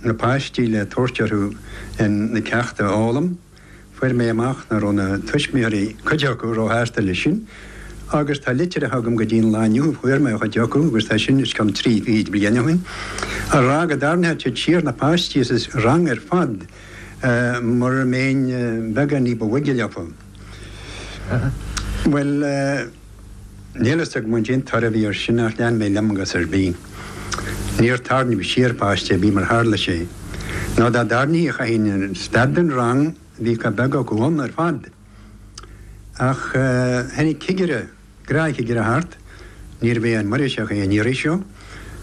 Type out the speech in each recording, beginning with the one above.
na páistí le tabhairt orthu na ceachta a fhoghlaim, fuair mé amach nach raibh na tuismitheoirí, cuid acu, ró-shásta leis sin, agus tá litreacha agam go dtí an lá inniu, a fuair mé ó chuid acu, agus tá sin os cionn trí fichid bliain ó shin, ag rá go dtarraingeodh siad siar na páistí as an rang ar fad mura mbeinn beagán ní ba bhoige leofa. Bhuel. Níl fhios agam cad é an toradh a bhí air sin ach lean mé liom i gcás ar bith. Níor tarraingíodh siar páiste ar bith, mar a tharla sé. Nó dá dtarraingtí chaithfinn stad den rang bhí chomh beag acu ann ar fad. Ach tháinig cigire, gnáthchigire thart, níorbh é an Muirgheasach é an iarraidh seo,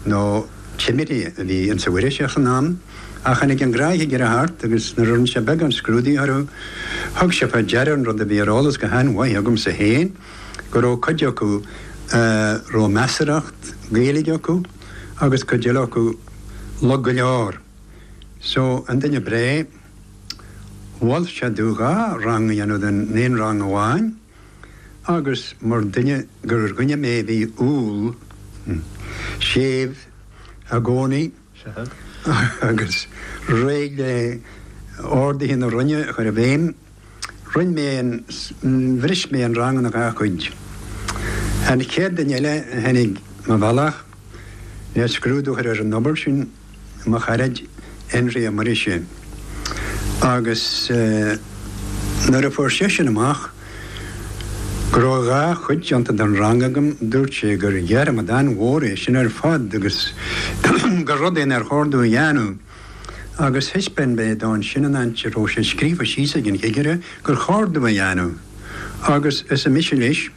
nó timire a bhí insa Mhuirgheasach san am ach tháinig an gnáthchigire thart agus nuair a rinne sé beagán scrúdaigh orthu, thug sé fá deara an rud a bhí ar eolas go han-mhaith agamsa fhéin, go raibh cuid acu a raibh measaracht Ghaeilge acu agus cuid eile acu lag go leor. So, an duine breá, mhol sé domh dhá rang a dhéanamh den aon rang amháin, Agus mar duine gur dhuine mé a bhí umhal, hm, séimh i gcónaí agus réidh le orduithe na Roinne a chur i bhfeidhm, roinn mé an, bhris mé an rang ina dhá chuid. An chéad duine eile a tháinig mo bhealach le scrúdú a chur ar an obair sin, mo charaid Énrí Ó Muirgheasa agus nuair a fuair seisean amach go raibh dhá chuid déanta den rang agam dúirt sé gur dhearmad an-mhór é sin ar fad agus gur rud é nár chóir domh a dhéanamh agus thaispeáin mé dó ansin an áit a raibh sé scríofa síos ag an chigire gur chóir domh a dhéanamh agus arsa mise leis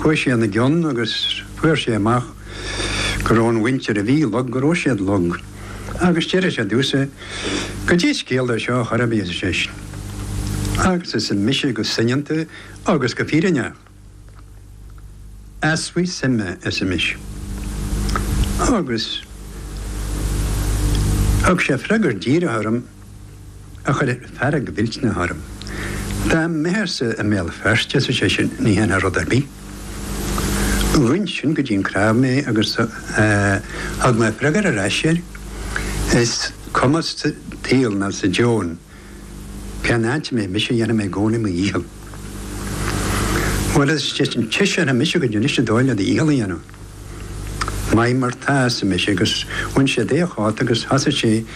Chuaigh sé ina gcionn agus fuair sé amach go raibh an mhuintir a bhí lag, go raibh siad lag. Agus d'fhiafraigh sé domhsa, cad é is ciall dó seo ar chor ar bith, arsa seisean. Agus arsa mise go soineanta agus go fírinneach, easbhaidh suime, arsa mise. Agus thug sé freagar díreach orm. a chuir fearg mhillteanach orm. Dá mbeifeása i mBéal Feirste, arsa seisean, ní dhéanfá rud ar bith. Ghoin sin go dtí an cnámh mé agus thug mé freagar ar ais air, Is cuma sa tsaol ná sa domhan cén áit a mbeidh mise, dhéanfaidh mé i gcónaí mo dhícheall. Bhuel, arsa seisean, taispeánfaidh mise duit anois an dóigh le do dhícheall a dhéanamh. Maith mar tá, arsa mise, agus bhain sé de a chóta agus thosaigh sé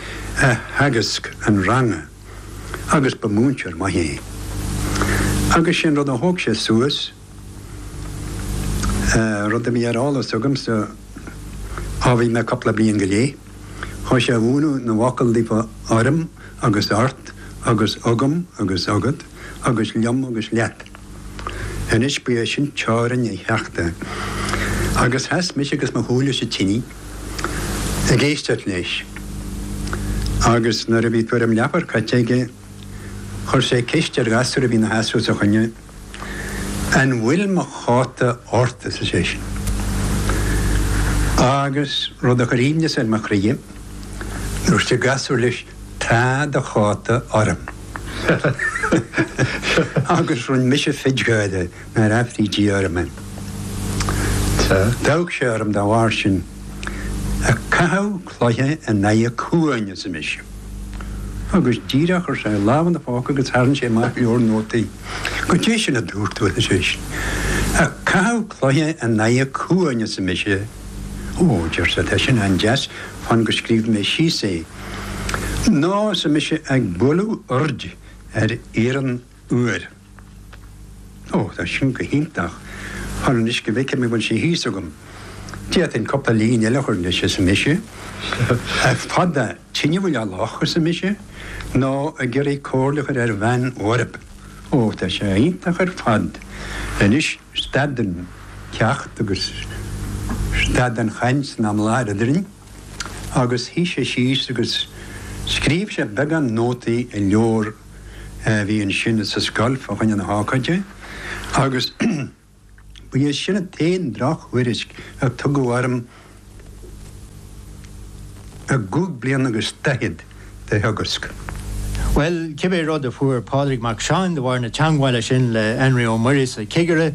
a theagasc an ranga, agus ba mhúinteoir maith é. Agus sé an rud a thóg sé suas, rud a bhí ar eolas agamsa ó bhí mé cúpla bliain go leith, thosaigh sé a mhúineadh na bhfocal daofa orm agus ort agus agam agus agat. agus liom agus leat. Anois ba é sin teorainn an cheachta. Agus sheas mise agus mo chúl leis an tine ag éisteacht leis. Agus nuair a bhí tuairim leathuair caite aige chuir sé ceist ar ghasúr a bhí ina sheasamh os a choinne, 'An bhfuil mo chóta ort? arsa seisean. Agus, rud a chuir aoibhneas ar mo chroidhe, dúirt an gasúr leis, Tá do chóta orm. Agus rinne mise fit gáire nár aifrí Dia orm é. D'amharc sé orm dá bharr sin. Ag caitheamh cloiche in aghaidh cuain, arsa mise. Agus díreach chuir sé lámh ina phóca agus tharraing sé amach leabhar nótaí. Goidé sin a dúirt tú, arsa seisean. Ag caitheamh cloiche in aghaidh cuain, arsa mise. Ó, deir sé, tá sin an-deas, fan go scríobha mé síos é. Nó, arsa mise, ag bualadh oird ar iarann fhuar. Ó, tá sin go hiontach. Fan anois go bhfeicfidh mé an bhfuil sé thíos agam. D'fhéadfainn cúpla líne eile a chur leis, arsa mise. Ag fadú tine faoi loch, arsa mise, nó ag iarraidh comhairle a chur ar bhean bhorb. Ó, tá sé iontach ar fad. Anois, stad an ceacht agus stad an chaint san am i láthair eadrainn. agus shuigh sé síos agus scríobh sé beagán nótaí i leabhar a bhí ansin sa scoil fá choinne na hócáide agus ba é sin an t-aon drochthuairisc a tugadh orm i gcúig bliana agus daichead de theagasc. Bhuel, cibé rud a fuair Pádraig Mac Seáin de bharr na teangmhála sin le hÉnrí Ó Muirgheasa, cigire,